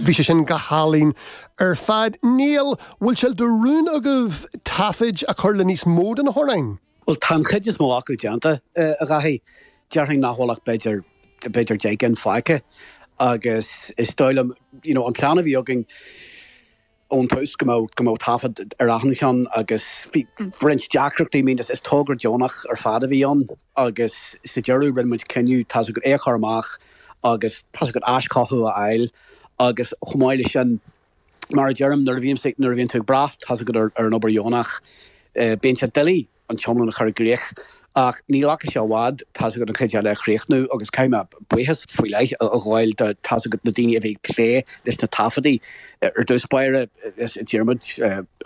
Bhí sé sin go hálainn ar fad. Neil, an bhfuil sé de rún agaibh taifid a chur le níos mó de na hamhráin? Bhuel, tá an chuid is mó acu déanta, a Dhaithí. Déarfainn nach bhfuil ach b'fhéidir, b'fhéidir deich gcinn fágtha. Agus is dóigh liom, you know, an plean a bhí againn, ón tús go mbeadh taifead ar achan cheann agus roinnt deacrachtaí, I mean is togra deonach ar fad a bhí ann agus sa deireadh rinne muid cinneadh tá's agat é a chur amach agus tá's agat aischothú a fháil agus chomh maith leis sin mar a deirim nuair a bhíonn nuair a bhíonn tú ag brath tá's agat ar an obair dheonach bíonn sé doiligh an t-iomlán a chur i gcrích. Ach ní ghlacfadh sé i bhfad, tá's agat an chuid eile a chríochnú agus caithfidh mé buíochas faoi leith a ghabháil do, tá's agat, na daoine a bhí ag plé leis na taifeadtaí. Ar dtús báire, le Diarmaid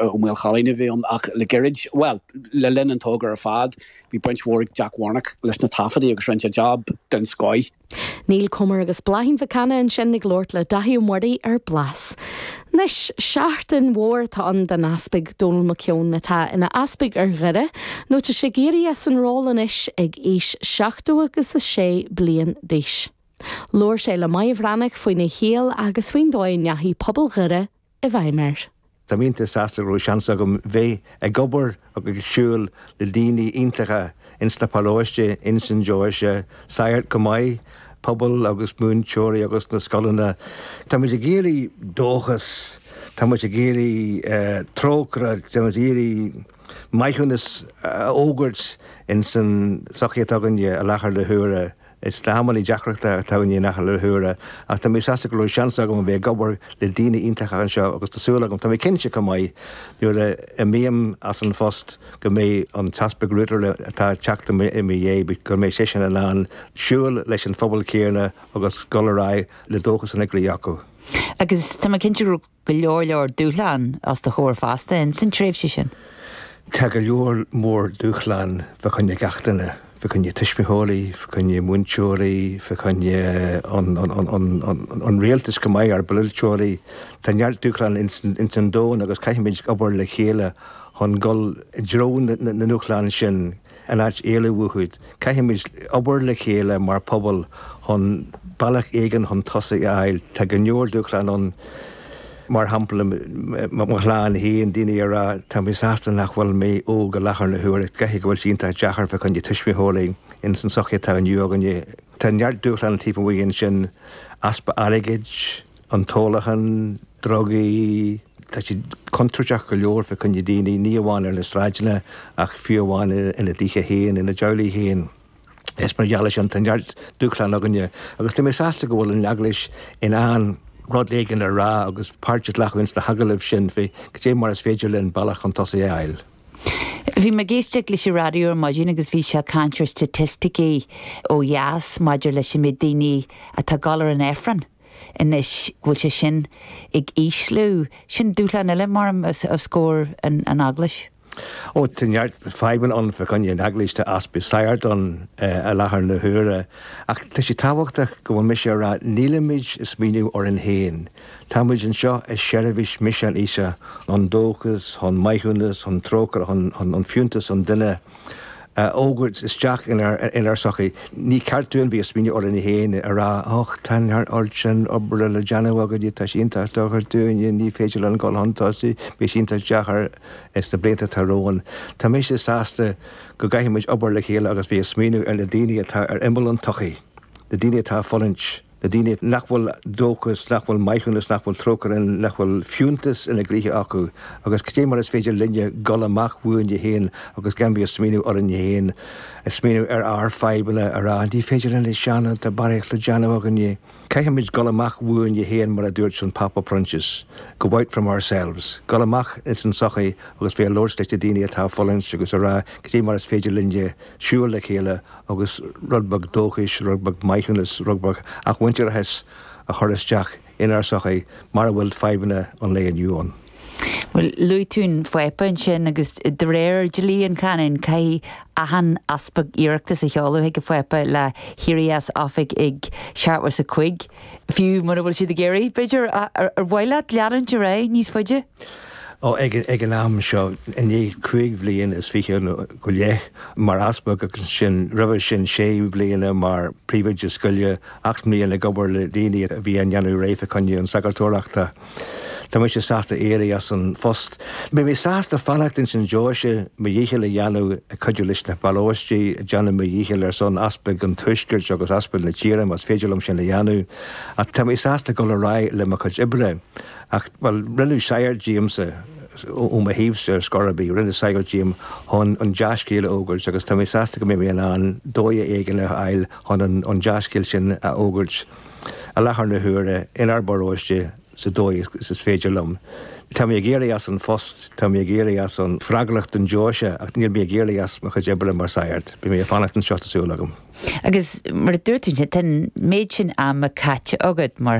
Ó Maolchalann a bhí ann ach le gairid, bhuel, le linn an togra ar fad, bhí baint mhór ag Jack Warnock leis na taifeadtaí agus rinne sé job den scoith. Neil Comer agus Bláithín Mhic Cana ansin ag labhairt le Daithí Uí Mhuirí ar Blas. Anois, seachtain mhór atá ann don Easpag Donal McKeown atá ina Easpag ar Dhoire nó tá sé ag éirí as an ról anois ag aois seachtó agus a sé bliain d'aois. Labhair sé le Máire Bhreathnach faoina shaol agus faoin dóigh a ndeachaigh pobal Dhoire i bhfeidhm air. Tá mé iontach sásta go raibh seans agam bheith ag obair agus ag siúl le daoine iontacha ins na paróistí ins an deoise, sagairt chomh maith, pobal agus múinteoirí agus na scoileanna. Tá muid ag iarraidh dóchas, tá muid ag iarraidh trócaire, tá muid ag iarraidh maithiúnas a fhógairt ins an sochaí atá againne i láthair na huaire. Is amannaí deacra atá againn i láthair na huaire, ach tá mé sásta go raibh seans agam a bheith ag obair le daoine iontacha anseo agus tá súil agam, tá mé cinnte chomh maith, nuair a imím as an phost go mbeidh an tEaspag Router atá ag teacht i mo dhiaidh, go mbeidh seisean in ann siúl leis an phobal céanna agus dul ar aghaidh le dóchas ina gcroí acu. Agus tá mé cinnte go raibh go leor leor dúshlán os do chomhair feasta ins an tréimhse sin? Tá go leor mór dúshlán fa choinne gach duine, fa choinne tuismitheoirí, fa choinne múinteoirí, fa choinne an Rialtas chomh maith, ár bpolaiteoirí. Tá neart dúshlán ins an domhan agus caithfimid obair le chéile chun dul i dtreo na ndúshlán sin. in áit éalú uathu. Caithfimid obair le chéile mar phobal chun bealach éigin chun tosaigh a fháil. Tá go leor dúshláin ann, mar shampla mo chlann féin, daoine ag rá tá mé sásta nach bhfuil mé óg i láthair na huaire. Caithfidh go bhfuil sé iontach deacair fá choinne tuismitheoirí ins an sochaí atá inniu againne. Tá neart dúshláin taobh amuigh ansin, easpa airgid, an t-ólachan, drugaí, tá siad contúirteach go leor fé choinne daoine, ní amháin ar na sráideanna ach fiú amháin ina dtithe féin, ina dteaghlaigh féin. Is, mar gheall ar sin tá neart dúshláin againne agus tá mé sásta go bhfuil an Eaglais in ann rud éigin a rá agus páirt a ghlacadh ins na hagallaimh sin fé cad é mar is féidir linn bealach chun tosaigh a fháil. Bhí mé ag éisteacht leis an raidió ar maidin agus bhí sé ag caint ar staitisticí ó dheas maidir leis an méid daoine atá ag gabháil ar an Aifreann. Anois, go bhfuil sé sin ag ísliú, sin dúshlán eile os comhair an Eaglais. Ó, tá neart fadhbanna ann fá choinne an Eaglais, tá easpa sagart ann i láthair na huaire. Ach tá sé tábhachtach go bhfuil mise ag rá nílimid ag smaoineamh orainn féin. Táimid anseo i seirbhís misean Íosa, chun dóchas, chun maithiúnas, chun trócaire, chun fiúntas an duine. a fhógairt isteach inár sochaí. Ní ceart dúinn bheith ag smaoineamh orainne féin, ag rá, Och, tá an oiread sin oibre le déanamh againne, tá sé iontach deacair dúinne, ní féidir linn dul chun tosaigh, beidh sé iontach deacair ins na blianta atá romhainn. Tá mise sásta go gcaithfimid obair le chéile agus bheith ag smaoineamh ar na daoine atá ar imeall an tsochaí, na daoine atá ag fulaingt. Na daoine nach bhfuil dóchas, nach bhfuil maithiúnas, nach bhfuil trócaire, nach bhfuil fiúntas ina gcroíthe acu, agus cad é mar is féidir linne dhul amach uainne féin agus gan bheith a' smaoineamh orainne féin, a' smaoineamh ar ár fadhbanna, a' rá ní féidir linn seo nó siúd, tá barraíocht le déanamh againne. Caithfimid dhul amach uainne féin mar a dúirt an Pápa Proinsias, go out from ourselves, dhul amach ins an tsochaí agus bheith a' labhairt leis na daoine atá a' fulaingt agus a' rá cad é mar is féidir linne siúl le chéile agus rud beag dóchais, rud beag maithiúnas, rud beag athmhuintearachais a chur isteach inár sochaí mar a bhfuil fadhbanna an lae inniu ann. Bhuel, luaigh tú an Pápa ansin agus de réir dhlí na canóna caithfidh achan easpag iarratas a sheoladh chuig an Phápa le héirí as oifig ag seachtó is a cúig, fiú mura bhfuil siad ag iarraidh, b'fhéidir. Ar mhaith leat leanúint ar aghaidh níos faide? Ó, ag an am seo, i ndiaidh cúig bhliain is fiche go leith mar Easpag agus ansin roimhe sin sé bliana mar Príomhoide Scoile, ocht mbliain ag obair le daoine a bhí á ndéanamh réidh fé choinne an tsagartóireachta, tá mise sásta éirí as an phost. Beidh mé sásta fanacht insan deoise, mo dhícheall a dhéanamh ag cuidiú leis na paróistí, ag déanamh mo dhícheall ar son Easpaig an Tuaiscirt agus Easpaig na tíre más féidir liom sin a dhéanamh, ach tá mé sásta dul ar aghaidh le mo chuid oibre. Ach, bhuel, rinneadh sagart díomsa, ó mo thaobhsa ar scor ar bith, rinneadh sagart díom chun an dea-scéal a fhógairt agus tá mé sásta go mbeidh mé in ann dóigh éigin a fháil chun an dea-scéal sin a fhógairt i láthair na huaire inár bparóiste sa dóigh is féidir liom. Tá mé ag éirí as an phost, tá mé ag éirí as an bhfreagracht don deoise ach níl mé ag éirí as mo chuid oibre mar shagart. Beidh mé ag fanacht anseo, tá súil agam. Agus, mar a dúirt tú, tá an méid sin ama caite agat mar.